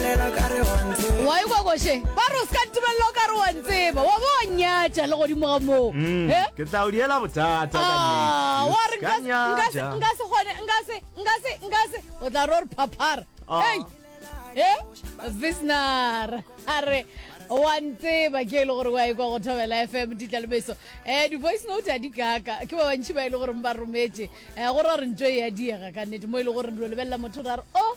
wa e kwa koše ba re o se ka ntumelela o ka re wa ntseba wa bo wa nyatša le godimo ga moo Mm, Eh? ke tla o diela bothata ka Ah, nnete. wa re Ka nka se- nka se- nyatša. nka se kgone nka se nka se nka se o tla re o re phaphara Ah. Hey! Eh? visnar a re wa ntseba ke e le gore wa e kwa go thobela fm ditlalebeso um di-voice note a di kaka ke ba bantšhi ba e le goreng ba rometse um go ra re ntso e ya diega ka nnete mo e le gore re lebelela motho ra re o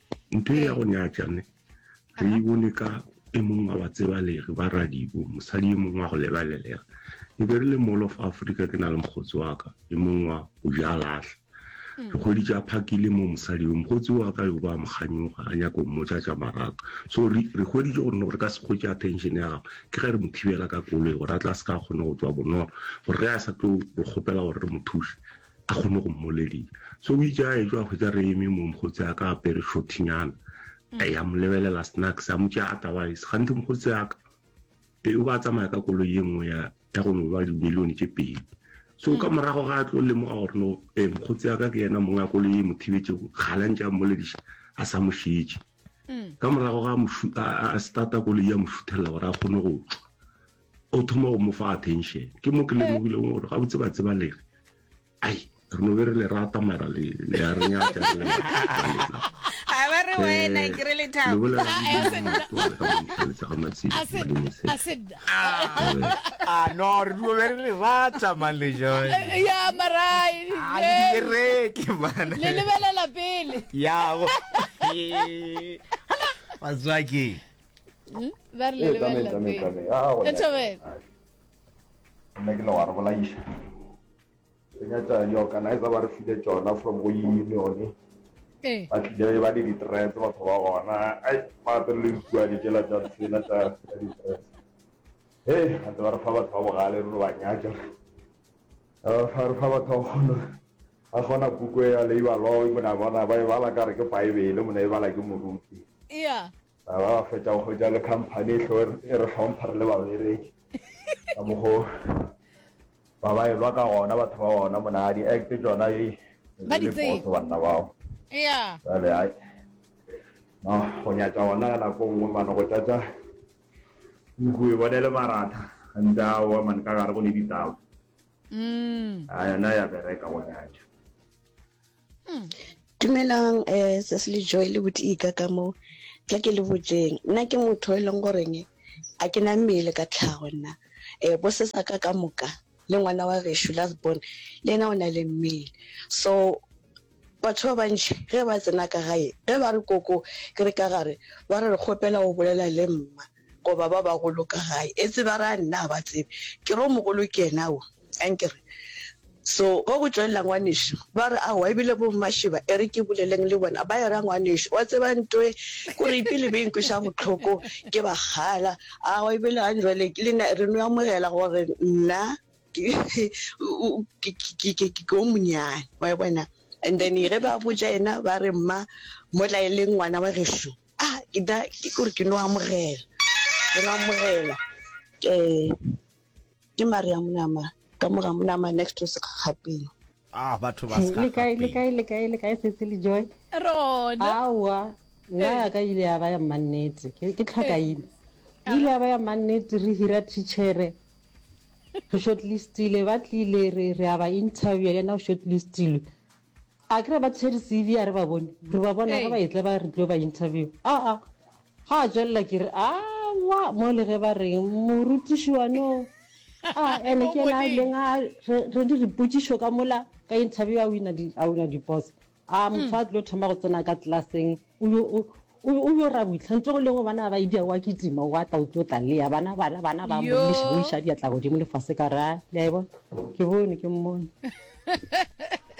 Ntho ya go nyatša ne re e bone ka e mong wa batsebalegi ba radibo mosadi e mong wa go lebalelega e be re le mall of africa ke na le mokgotsi wa ka e mong wa go ja lahla dikgwedi tša phakile mo mosadi yo mokgotsi wa ka yo ba mokganyoga a nyako mmotsa tša maraka so re kgweditse gore no re ka se kgwetše attention ya gago ke ge re mo thibela ka koloi gore a tla se ka kgone go tswa bonolo gore ge a sa tlo re kgopela gore re mo thuse A kgone go mmolelisa. So o itše a etšwa a hwetša re eme mo mokgotsi a ka apere shortinyana. A ya mo lebelela snacks a mo tšea otherwise gante mokgotsi a ka e o ba tsamaya ka koloi ye nngwe ya ya go no ba dimilione tše pedi. So ka morago ga a tlo lemoga gore no eh mokgotsi a ka ke yena mongwe a koloi e mo thibetšego gala ntše a mmolediša a sa mo šetše. Ka morago ga a starta koloi ya mo šuthelela gore a kgone go tšwa. O thoma go mo fa attention. Ke mo ke lemogileng gore gabotse ba tseba lere. Ai, re no be re le rata mara le le a re nyaka re le lena. A ba re wena ke re le thabo. Le bolela le tsa ga matsedi. Ah no, re no be re le rata man le joy. Ya marai. A le direke man. Le lebelela pele. Ya. Hala, what's waking? hmm? ba re le ba nna ke le wa re bolaiša re nyatsa di-organizer ba re file tsona from go unione Eh. ba tlile ba le di-tres batho ba gona ai gape le ikua dikela tsa tsena tsa di-tres e gate ba re fa batho ba bogale re ba nyaka re fa batho ba kgona ba kgona puko ya labor law mona bona ba e bala kare ke baebele mona e bala ke moruti Ba ba fetša go hwetša le khamphani e hlo e re hlompha re le babereki ka mogo ba ba elwa ka gona batho ba gona mona di act tsona e ba di tseye banna bao ya jale ai no go nyatša gona ka nako nngwe mane go tšatša nku e bone le maratha gantsi a oa mane ka gare go le ditaba mm. a yona ya bereka go nyatša hmm. dumelang um eh, sese le joy le botika ka mo tla ke le botseng nna ke motho e leng goreng a ke na mmele ka tlhago nna um bo sesa ka ka moka le ngwana wa reshu last born le ena o na le mmele so batho ba bantšhi ge ba tsena ka gae ge ba re koko ke re ka gare ba re re kgopela go bolela le mma Goba ba bagolo ka gae. Etse ba ra nna ga ba tsebe. Ke re o mogolo ke yena wo. Ankere? So, wa go tšwelela ngwanešu. Ba re aowa, ebile bommašeba, e re ke boleleng le bona, ba e ra ngwanešu. Wa tseba ntoe? Ko re ipele be e nkweša bohloko, ke ba kgala. Aowa, ebile gang jwale ke lena, re no amogela gore nna ke, ke, ke, ke o monyane. Wa e bona? And then ge ba botša yena, ba re, Mma, mo tla e leng ngwana wa gešo. A ke da ke gore ke no amogela ke no amogela ke ke mari ya monama ka moga monama next to sekgapeng ah batho ba ska le kae le kae le kae le kae setse le joy rona awa nna ya ka ile ya ba ya mannete ke ke tlhakaile ile ya ba ya mannete re hira teachere re shortlistile ba tlile re re aba interview yena o shortlistile A kere ba tshwere CV a re ba bone. Re ba bona ge ba etla ba re tlo ba interview. A a. Ga a tswelela ke re a wa mo le ge ba reng morutiši wa no. A ene ke na le nga re di ripotsišo ka mola ka interview a wina di a wina di boss. A motho a tlo thoma go tsena ka class-eng. O be o ra boitlha ntse go lengwe bana ba idia wa kitima wa tla o tlo tla lea bana bana bana ba mmuša go iša diatla godimo lefase ka ra le a bona ke bone ke mmone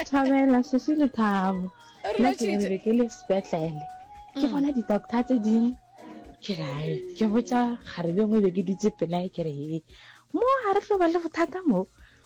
thabela sese le thabo nna ke be ke le sepetlele ke bona di-doctor tse dingwe ke rae ke botsa gare bengwe be ke dutse pelae ke re mo ga re tlo ba le bothata mo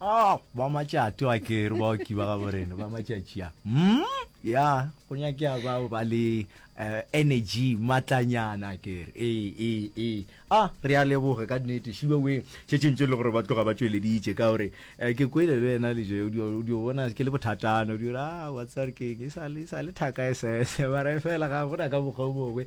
Ah, ba matšate wa kere ba oki ba gabo rena ba matšatši a mm? ya go nyakea bao ba le uh, energy matlanyana kere ee ee ee a ah, re a leboge ka nnete šibe we tše tšentše le gore ba tloga ba tšweleditše ka gore um ke kwele le wena leje o dio bona ke le bothatana o dio a ah, watsare keng e sa le thaka e sese mare fela ga gona ka mokgwa o mongwe